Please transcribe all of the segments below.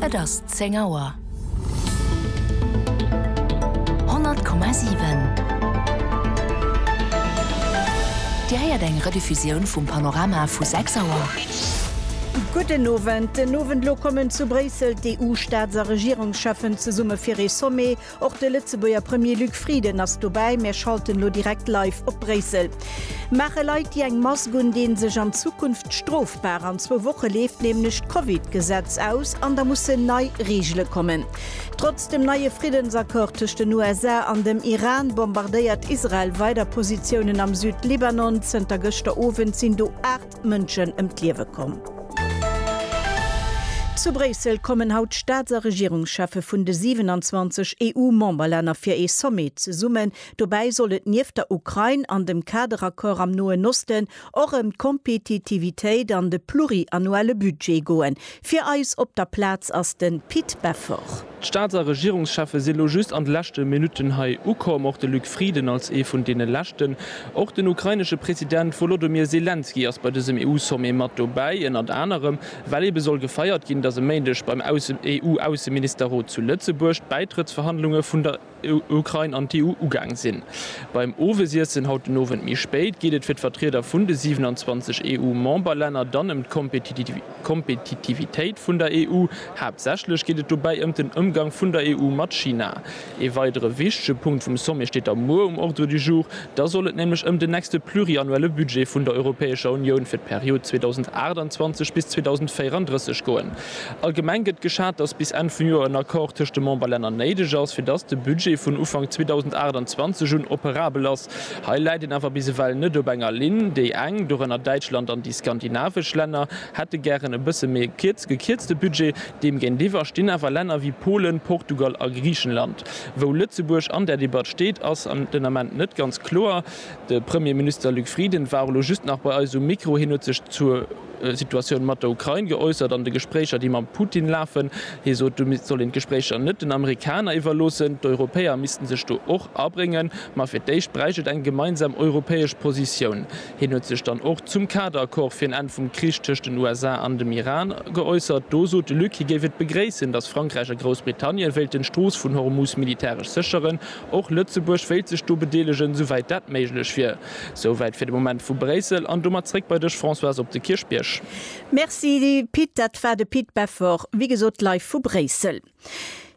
Et ass zéng Auer. 100,7 Dir héiert eng Rediffusioun vum Panorama vu 6 Auer. Gudden Owend. Den Owend elo kommen zu Bréissel d'EU-Staats a Regierungscheffen zesumme fir ee Sommet Och de Lëtzebuerger Premier Luc Frieden ass dobäi. Mir schalten elo direkt live op Bréissel. Maache Leit, déi eng Mask un deen, sech an Zukunft strofbar? An zwou Woche leeft nämlech d'Covid-Gesetz aus an da mussen nei Reegele kommen. Trotz dem neie Friddensaccord tëscht den USA an dem Iran bombardéiert Israel weider Positiounen am Süd-Libanon. Zënter gëschter Owend sinn do 8. Mënschen ëm d'Liewe komm. Zu Bréissel kommen haut d'Staats a Regierungscheffe vun de 27 EU-Memberlänner fir ee Sommet zesummen. Dobäi soll et nieft der Ukrain an dem Kaderaccord am Noen Osten och ëm d'Kompetitivitéit an de pluriannuelle Budget goen. Fir eis op der Plaz ass de Pit Beffort. D'Staats a Regierungscheffe sinn elo just an de leschte Minutten hei ukomm, och de Luc Frieden als ee vun deene leschten. Och den ukrainesche President Wolodomir Selenskyj ass bei dësem EU-Sommet mat dobäi, ënnert anerem well ebe soll gefeiert ginn, datt e Méindeg beim EU-Ausseministerrot zu Lëtzebuerg d'Bäitrëttsverhandlunge vun der Ukrain an d'EU ugaang sinn. Beim Owesiessen haut den Owend méi spéit geet et fir d'Vertrieder vun de 27 EU-Memberlänner dann ëm d'Kompetitivitéit vun der EU. Haaptsächlech geet et dobäi ëm den Ëmgang vun der EU mat China. Ee weidere wichtege Punkt vum Sommet steet da muer um Ordre du jour. Da soll et nämlech ëm den nächste pluriannuelle Budget vun der Europäescher Unioun fir d'Period 2028 bis 2034 goen. Allgemeng gëtt geschat, dass bis Enn vum Joer en Accord tëscht de Memberlänner néideg ass, fir dass de Budget vun Ufank 2028 un operabel ass. Hei läit een awer bis ewell net op enger Linn. Déi eng, dorënner Däitschland an déi skandinavesch Länner, hätte gären e bësse méi e gekierzte Budget. Deem géintiwwer stinn awer Länner wéi Polen, Portugal a Griichenland. Wou Lëtzebuerg an där Debatt steet, ass den Ament net ganz kloer. De Premierminister Luc Frieden war och elo just nach bei eis um Mikro. Hien huet sech zur. Situatioun mat der Ukrain geäussert an de Gespréicher, déi mam Putin lafen. Hie sot, do soll een d'Gespréicher net den Amerikaner iwwerloossen. D'Europäer missten sech do och abréngen. Ma fir d'éischt bräicht et eng gemeinsam europäesch Positioun. Hien huet sech dann och zum Kaderaccord fir en Enn vum Krich tëscht den USA an dem Iran geäussert. Do sot de Luc, hie géif et begréissen, datt Frankräich a Groussbritannien wéilten d'Strooss vun Hormus militäresch sécheren. Och Lëtzebuerg wéilt sech do bedeelegen, souwäit dat méiglech wier. Souwäit fir de Moment vu Bréissel an domat zréck bei dech Françoise op de Kierchbierg. Merci Pit, dat war de Pit Beffort, wéi gesot live vu Bréissel.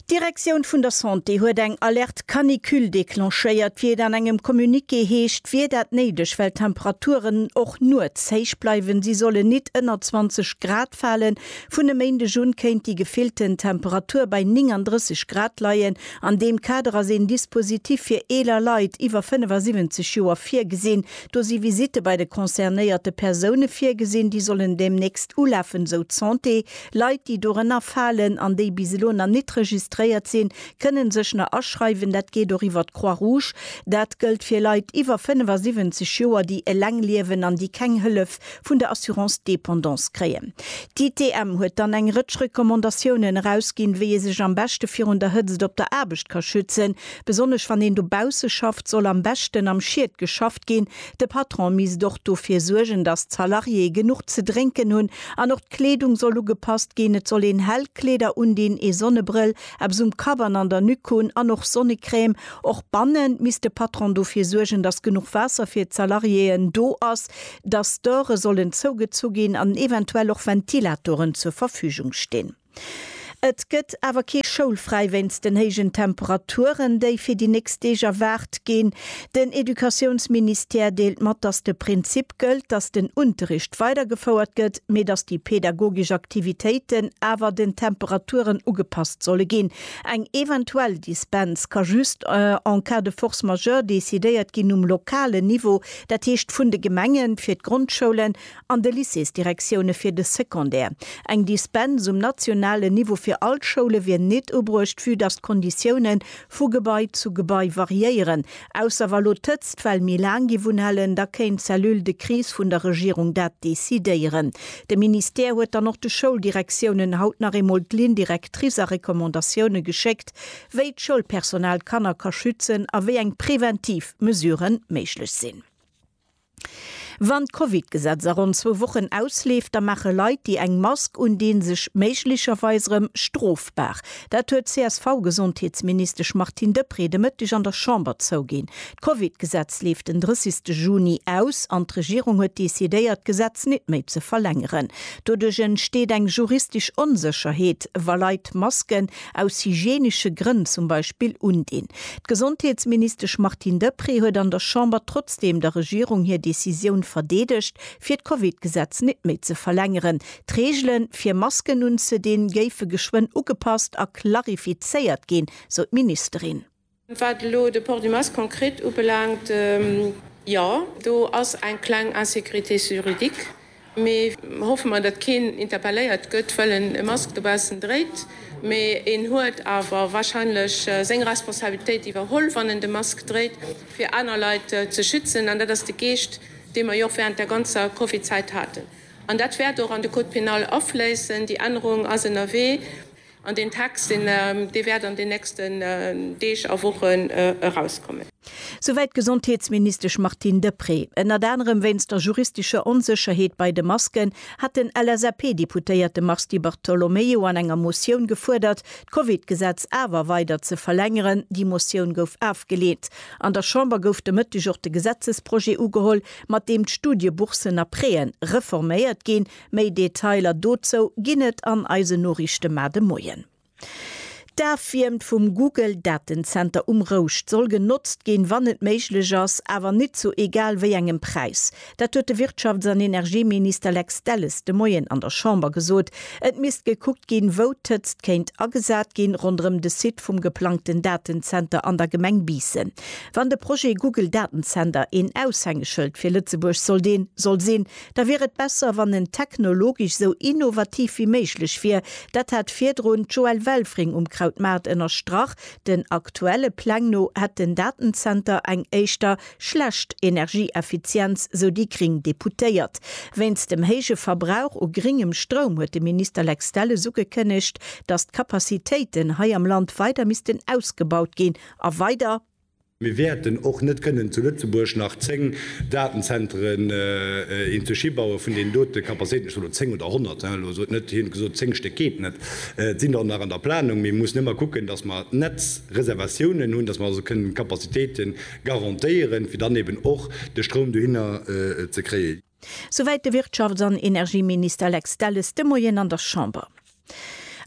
D'Direktioun vun der Santé huet eng Alerte canicule declenchéiert, wéi et an engem Communiqué heescht, wier dat néideg, well d'Temperaturen och nuets héich bleiwen. Si sollen nit ënner 20 Grad falen. Vun e Méindeg un kéint déi gefillten Temperatur bei 39 Grad leien, An deem Kader ass een Dispositif fir eeler Leit iwwer 75 Joer virgesinn. Do si Visitte bei de concernéierte Persoune virgesinn, déi sollen deemnächst ulafen, esou d'Santé. Leit, déi dorënner falen an déi bis elo nach nit registréiert sinn, kënnen sech nach aschreiwen. Dat geet och iwwer d'Croix Rouge. Dat gëllt fir Leit iwwer 75 Joer, déi eleng liewen an déi keng Hëllef vun der Assurance Dépendance kréien. D'ITM huet dann eng Rëtsch Recommandatiounen erausginn, wéi ee sech am beschte virun der Hëtzt op der Aarbecht ka schützen. Besonnesch wann een dobausse schafft, soll am beschten am Schied geschafft ginn. De Patron misst och dofir suergen, datt d'Salariéë genuch ze drénken hunn. An och d'Kleedung soll ugepasst ginn. Et soll een hell Kleeder undinn, ee Sonnebrëll, eppes um Kapp an an der Nuque hunn an och Sonnecrème. Och bannen misst de Patron dofir suergen, datt genuch Waasser fir d'Salariéeën do ass. dass d'Dore sollen zougezu ginn an eventuell och Ventilatoren zur Verfügung stinn. Et gëtt awer kee schoulfräi wéinst den héijen Temperaturen, déi fir déi nächst Deeg erwaart ginn. Den Educatiounsministère deelt mat, dass de Prinzip gëllt, dass den Unterricht weidergefouert gëtt, mee dass déi pedagogesch Aktivitéiten awer den Temperaturen ugepasst solle ginn. Eng eventuell Dispens ka just en cas de force majeure decidéiert ginn um lokalen Niveau. Dat heescht vun de Gemenge fir d'Grondschoulen an de Lycéesdirektioune fir de Secondaire. Eng Dispens um nationalen Niveau fir all d'Schoule wier nit ubruecht, vue dass d'Konditioune vu Gebai zu Gebai variéieren. Ausser wa lo d'Hëtzt well méi laang géif unhalen, da kéint d'Cellule de crise vun der Regierung dat decidéieren. De Ministère huet dann och de Schouldirektiounen haut nach eemol d'Ligne directrice a Recommandatioune geschéckt, wéi d'Schoulpersonal d'Kanner ka schützen a wéi eng preventiv Mesuren méiglech sinn. Wann d'Covid-Gesetz a ronn zwou Wochen ausleeft, da maache Leit, déi eng Mask undinn, sech méiglecherweis erëm strofbar. Dat huet d'CSV-Gesondheetsministesch Martine Deprez de Mëtteg an der Chamber zouginn. D'Covid-Gesetz leeft den 30 Juni aus an d'Regierung huet decidéiert, d'Gesetz nit méi ze verlängeren. Doduerch entsteet eng juristesch Onsécherheet, wa Leit Masken, aus hygienesche Grënn zum Beispill undinn. D'Gesondheetsministesch Martine Deprez huet an der Chamber trotzdeem der Regierung hir Decisioun verdeedegt, fir d'Covid-Gesetz net méi ze verlängeren. D'Reegele fir Masken unzedinn, géife geschwënn ugepasst a klarifizéiert ginn, sou d'Ministerin. Wat elo de Port du Masque konkret ubelaangt, jo, do ass eng kleng Insécurité juridique, mee hoffe mer, datt keen interpelléiert gëtt, well en e Mask dobaussen dréit. Mee en huet awer warscheinlech seng Responsabilitéit iwwerholl, wann en de Mask dréit, fir aner Leit ze schützen. An dat ass de Geescht, dee mer jo och während der ganzer Covid-Zäit haten. An dat wäert och an de Code pénal afléissen. Déi Ännerung ass ënnerwee. An deen Text, dee wäert an den nächsten Deeg a Wochen erauskommen. Souwäit d'Gesondheetsministesch Martine Deprez. Ënnert anerem wéinst der juristescher Onsécherheet bei de Masken hat den LSAP-Deputéierte Mars Di Bartolomeo an enger Motioun gefuerdert, d'Covid-Gesetz awer weider ze verlängeren. Déi Motioun gouf afgeleent. An der Chamber gouf de Mëtteg och de Gesetzesprojet ugeholl, mat deem d'Studieboursen a Préen reforméiert ginn. Méi Detailer dozou ginn et an eisen Noriichte mar de Moien. D'Afwiermt vum Google Datenzenter um Rouscht soll genotzt ginn, wann et méiglech ass, awer nit zu egal wéi engem Präis. Dat huet de Wirtschafts an Energieminister Lex Delles de Moien an der Chamber gesot. Et misst gekuckt ginn, wou d'Hëtzt kéint agesat ginn, ronderëm de Site vum geplangten Datenzenter an der Gemeng Biissen. Wann de Projet Google Datenzenter een Aushängeschëld fir Lëtzebuerg sollt een soll sinn, Da wier et besser, wann en technologesch esou innovativ wéi méiglech wier. Dat hat virdrun d'Joëlle Welfring um Krautmaart ënnerstrach. Den aktuelle Pläng no hätt den Datenzenter eng éischter schlecht Energieeffizienz, sou déi gring Deputéiert. Wéinst dem héije Verbrauch u gringem Stroum huet de Minister Lex Delles ugekënnegt, datt d'Capacitéiten hei am Land weider missten ausgebaut ginn a weider, Mir wäerten och net kënnen zu Lëtzebuerg nach zéng Datenzentren een ze schi baue vun deenen dote Capacitéiten, ech soen elo zéng oder honnert, elo sot net hien gesot, zéng Stéck geet net, et sinn der och nach an der Planung. Mir mussen ëmmer kucken, datt mer d'Netzreservatiounen hunn, datt mer also kënnen d'Capacitéite garantéieren, fir dann eeben och de Stroum dohinner ze kréien. Souwäit de Wirtschafts an Energieminister Lex Delles de Moien an der Chamber.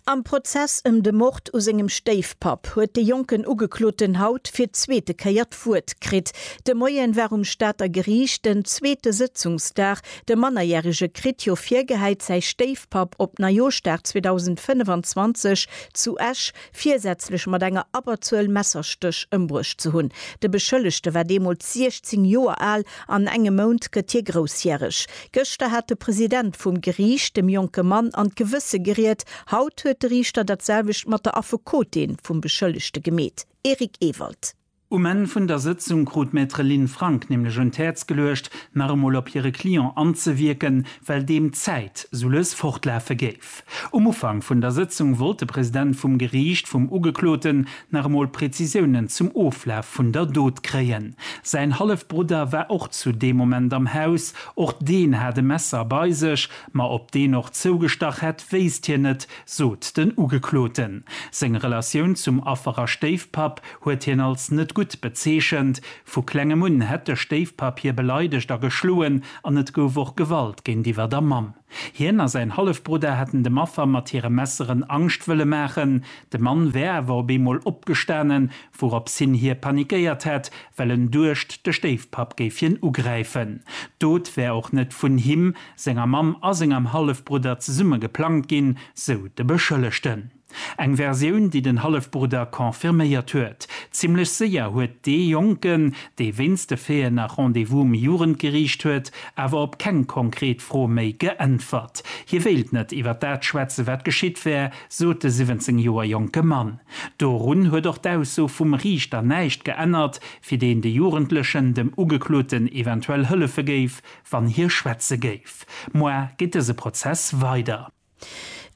Am Prozess ëm de Mord u sengem Stéifpapp huet de jonken Ugekloten haut fir d'zweete Kéier d'Wuert kritt. De Moien war um Stater Geriicht den zweete Sëtzungsdag. De Mannerjärege kritt jo virgehäit, säi Stéifpapp op Neijooschdag 2025 zu Esch virsätzlech mat enger Abberzuel Messerstéch ëmbruecht ze hunn. De Beschëllegte war deemools 16 Joer al, an engem Mount gëtt hie groussjäreg. Gëschter hat de President vum Geriicht dem jonke Mann an d'Gewësse geriet, haut huet de Riichter dat selwecht mat der Affekotin vum Beschëllegte gemeet. Eric Ewald. Um Enn vun der Sëtzung krut d'Maître Lynn Frank nämlech un d'Häerz geluecht, nach emol op hire Client anzewierken, well deem d'Zäit sou lues fortlafe géif. Um Ufank vun der Sëtzung wollt de President vum Geriicht vum Ugekloten nach emol Prezisiounen zum Oflaf vun der Dot kréien. Säin Hallefbrudder war och zu deem Moment am Haus. Och deen hat e Messer bei sech, ma ob deen och zougestach hätt, wéisst hien net, sot den Ugekloten. Seng Relatioun zum Affer a Stéifpapp huet hien als net gutt bezeechent. Vu klengem un hätt de Stéifpapp hie beleidegt a geschloen an et gouf och Gewalt géintiwwer der Mamm. Hien a säin Hallefbrudder hätten dem Affer mat hire Messeren Angscht wëlle maachen. De Mann wär awer op eemol opgestanen, wourops hin hie panikéiert hätt, well en duecht, de Stéifpapp géif hien ugräifen. D'Dot wär och net vun him, senger Mamm a sengem Hallefbrudder zesumme geplangt ginn, sou de Beschëllegten. Eng Versioun, déi den Hallefbrudder confirméiert huet. Zimmlech séier huet dee Jonken, dee wéinst de Feeën nach Rendez-vous um Jugendgeriicht huet, awer op keng konkret Fro méi geäntwert. Hie wéilt net iwwer dat schwätzen, wat geschitt wär, sot de 17 Joer jonke Mann. Dorun huet och d'Ausso vum Riichter näischt geännert, fir deen de Jugendlechen dem Ugekloten eventuell hëllefe géif, wann hie schwätze géif. Moar geet dëse Prozess weider.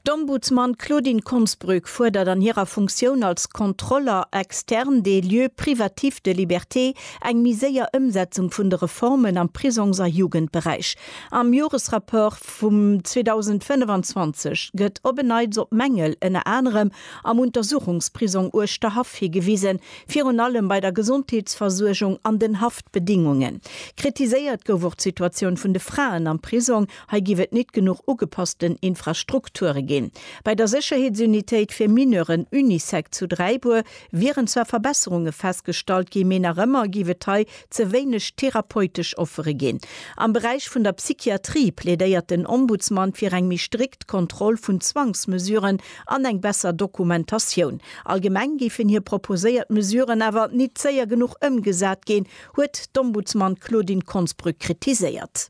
D'Ombudsman Claudine Konsbrück fuerdert an hirer Funktioun als Contrôleur externe des lieux privatifs de liberté eng méi séier Ëmsetzung vun de Reformen am Prisongs a Jugendberäich. Am Joresrapport vum 2025 gëtt op en Neits op Mängel ënner anerem am Untersuchungsprisong Uerschterhaff higewisen, virun allem bei der Gesondheetsversuergung an den Haftbedingungen. Kritiséiert gouf och d'Situatioun vun de Fraen am Prisong. Hei giff et nit genuch ugepassten Infrastrukture gin. Bei der Secherheetsunitéit fir Mineuren, Unisec, zu Dräibuer wieren zwar Verbesserungen festgestallt gin, mee nach ëmmer giff et hei ze wéineg therapeutesch Offere gin. Am Beräich vun der Psychiatrie plädéiert den Ombudsman fir eng méi strikt Kontroll vun Zwangsmesuren an eng besser Dokumentatioun. Allgemeng géifen hir proposéiert Mesuren awer nit séier genuch ëmgesat gin, huet d'Ombudsman Claudine Konsbrück kritiséiert.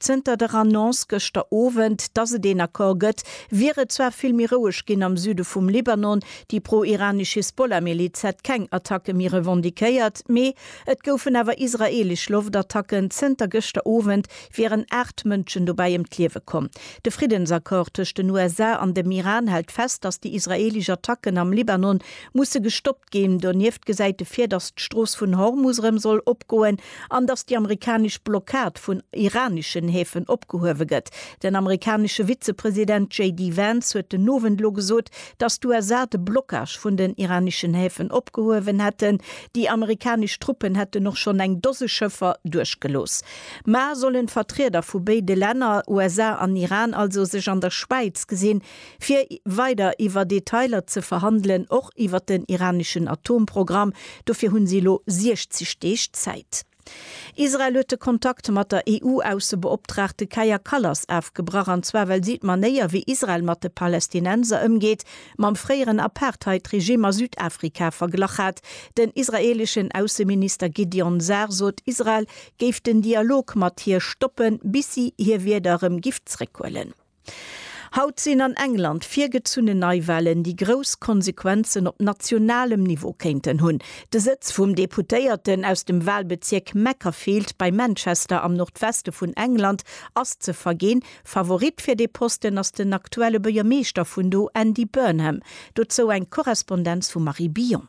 Zënter der Annonce gëschter Owend, dass et een Accord gëtt, wier et zwar vill méi roueg ginn am Süde vum Libanon. Déi pro-iranesch Hisbollah-Miliz hätt keng Attacke méi revendiquéiert, mee et goufen awer israeelesch Loftattacken. Zënter gëschter Owend wieren aacht Mënschen dobäi ëm d'Liewe komm. De Friddensaccord tëscht den USA an dem Iran hält fest, dass déi israeelesch Attacken am Libanon musse gestoppt ginn. Donieft gesäit e vir, dass d'Strooss vun Hormus erëm soll opgoen An dass déi amerikanesch Blockad vun iraneschen Häfen opgehuewe gëtt. Den amerikanesche Vizepresident JD Vance huet den Owend elo gesot, dass d'USA de Blockage vun den iraneschen Häfen opgehuewen hätten. Déi amerikanesch Truppen hätten och schonn eng Dose Schëffer duerchgelooss. Mar sollen d'Vertrieder vu béide Länner, USA an Iran, also sech an der Schwäiz gesinn, fir weider iwwer Detailer ze verhandelen, och iwwer den iraneschen Atomprogramm. Dofir hunn si elo 60 Deeg Zäit. Israel huet de Kontakt mat der EU-Aussebeoptraagte Kaja Kallas afgebrach, an zwar well si d'Manéier, wéi Israel mat de Palästinenser ëmgeet, mam fréieren Apartheid-Regime a Südafrika verglach hat. Den israeeleschen Ausseminister Gideon Sar sot, Israel géif den Dialog mat hir stoppen, bis si hir Wierder erëm giff zeréckhuelen. Haut sinn an England virgezunnen Neiwahlen, déi grouss Konsequenzen op nationalem Niveau kéinten hunn. De Sëtz vum Deputéierten aus dem Wahlbezierk Macclesfield bei Manchester am Nordweste vun England ass ze verginn. Favorit fir dee Posten ass den aktuelle Buergermeeschter vun do, Andy Burnham. Dozou eng Korrespondenz vum Marie Billon.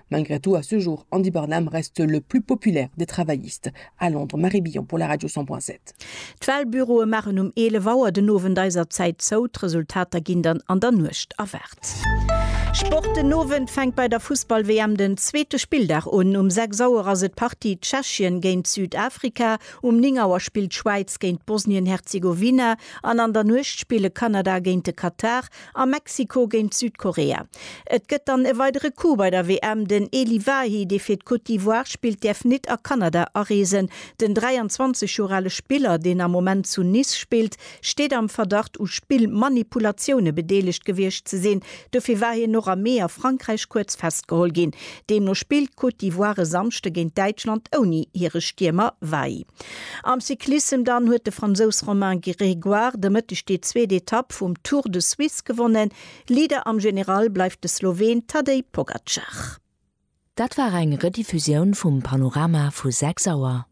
Malgré tout, à ce jour, Andy Burnham reste le plus populaire des travaillistes à Londres. Marie Billon pour la Radio 100.7. D'Walbüroe maachen um 11 Auer den Owend eiser Zäit zou, d'Resultater ginn dann an der Nuecht erwaart. Sport, Den Owend fänkt bei der Fussball-WM den zweete Spilldag un. Um 6 Auer ass et d'Partie Tschechien géint Südafrika, um 9 Auer spillt d'Schwäiz géint Bosnien-Herzegowina an an der Nuecht spille Kanada géint de Katar A Mexiko géint Südkorea. Et gëtt dann e weidere Coup bei der WM, Den Elie Wahi, dee fir d'Côte d'Ivoire spillt, däerf nit a Kanada areesen. Den 23 Joer ale Spiller, deen am Moment zu Nice spillt, steet am Verdacht u Spillmanipulatioune bedeelegt gewiescht ze sinn. Dofir war hien och am Mee a Frankräich kuerz festgeholl ginn. Deemno spillt d'Côte d'Ivoire e Samschde géint Däitschland ouni hire Stiermer Weigl. Am Cyclissem dann huet de Fransous Romain Grégoire de Mëtteg déi zweet Etapp vum Tour de Suisse gewonnen. Leader am General bleift de Sloween Tadej Pogacar. Dat war eng Rediffusioun vum Panorama vu 6 Auer.